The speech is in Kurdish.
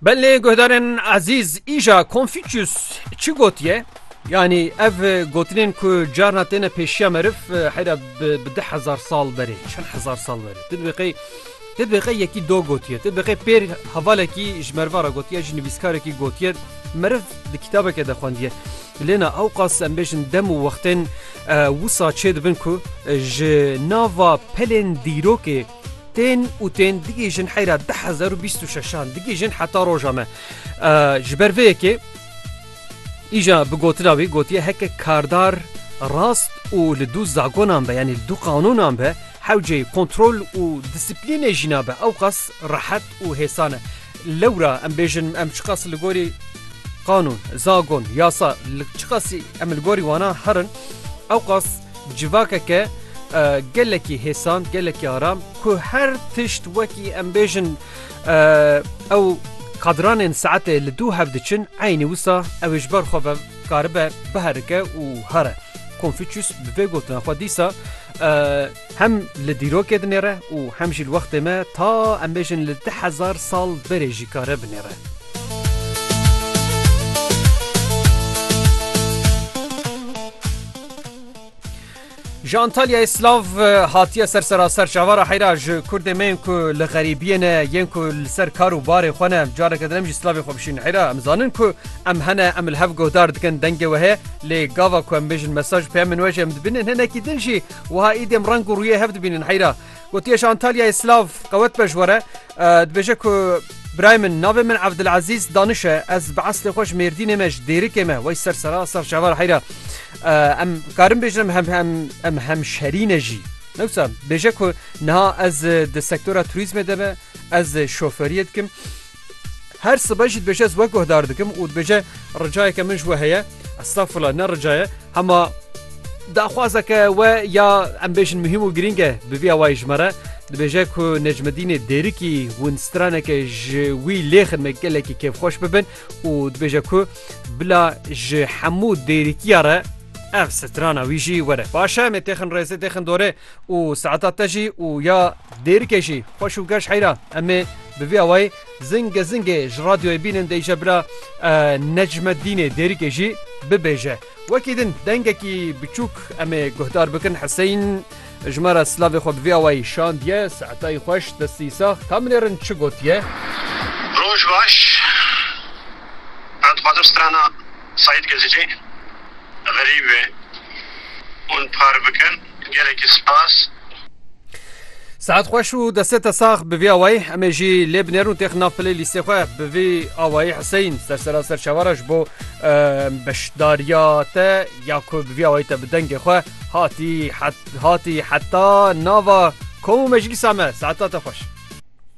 Belê guhdarên ezîz îja Konfûçyûs çi gotiye? Yanî ev gotinên ku carna têne pêşiya meriv heyra bi di hezar sal berê çend hezar sal berê tu dibê qey tu dibê qey yekî do gotiye tu dibê qey pêr hevalekî ji meriva re gotiye ji nivîskarekî gotiye meriv di kitabeke de xwendiye lêna ew qas em bêjin dem û wextên wisa çê dibin ku ji nava pelên dîrokê Tên û tên digihîjin heyra deh hezar û bîst û şeşan digihîjin heta roja me. Ji ber vê yekê îja bi gotina wî gotiye heke kardar rast û li dû zagonan be yanî li dû qanûnan be hewcê kontrol û disiplînê jî nabe ew qas rehet û hêsan e. Lewra em bêjin em çiqas li gorî qanûn, zagon, yasa li çiqasî em li gorî wana herin ew qas Civakeke gelekî hêsan, gelekî aram ku her tişt wekî em bêjin ew qadranên saetê li dû hev diçin eynî wisa ew ê ji ber xwe ve karibe biherike û here. Konfûçyûs bi vê gotina xwe dîsa hem li dîrokê dinêre û hem jî li wextê me ta em bêjin li du hezar sal berê jî kare binêre. Ji Antalyayê silav hatiye ser seraser çavara heyra ji Kurdê me yên ku li xerîbiyê ne yên ku li ser kar û barê xwe ne careke din em jî silavê xwe bişîn heyra em zanin ku em hene em li hev guhdar dikin dengê we heye lê gava ku em bêjin mesaj peyamên we jî em dibînin hinekî din jî wiha îdî em reng û rûyê hev dibînin heyra Gotiye ji Antalyayê Silav qewet be ji we re. Dibêje ku birayê min navê min Evdilezîz Daniş e. Ez bi eslê xwe ji Mêrdînê me ji Dêrikê me wey ser Serasa Şeva re heyra. Em karin bêjin em em hemşerî ne jî. Newsa bêje ku niha ez di sektora turîzmê de me ez şoferiyê dikim. Her sibe jî dibêje ez we guhdar dikim û dibêje ricayeke min ji we heye estağfurullah ne ricaye hema daxwazeke we ya em bêjin muhîm û girîng e bi vî awayî ji me re dibêje ku Necmedînê Dêrikî hûn straneke ji wî lê xidme gelekî kêfxweş bibin û dibêje ku bila ji hemû dêrikiya re ev strana wî jî were. Baş e em ê têxin rêzê têxin dorê. û saeta te jî û ya dêrikê jî xweş û geş heyra em ê bi vî awayî zingê zingê ji radyoyê bînin deyîje bila Necmedînê dêrikê jî bibêje. Wekî din dengekî biçûk em ê guhdar bikin Heseyîn ji me re silavê xwe bi vî awayî şandiye Saetayî xweş destî sax kamilê rind çi gotiye? Roj baş Ez dixwazim strana Seîd Gezicî xerîb e hûn par bikin. Gelekî spas. Sehet xweş û destê te sax bi vî awayî emê jî lê binêrûn têx nav pilê lîstê xwe bi vî awayî Huseyîn ser sera ser çavara ji bo beşdariya te ya ku bi vî awayî te bi dengê xwe hatî hatî heta nava kom û meclîsa me saeta te xweş.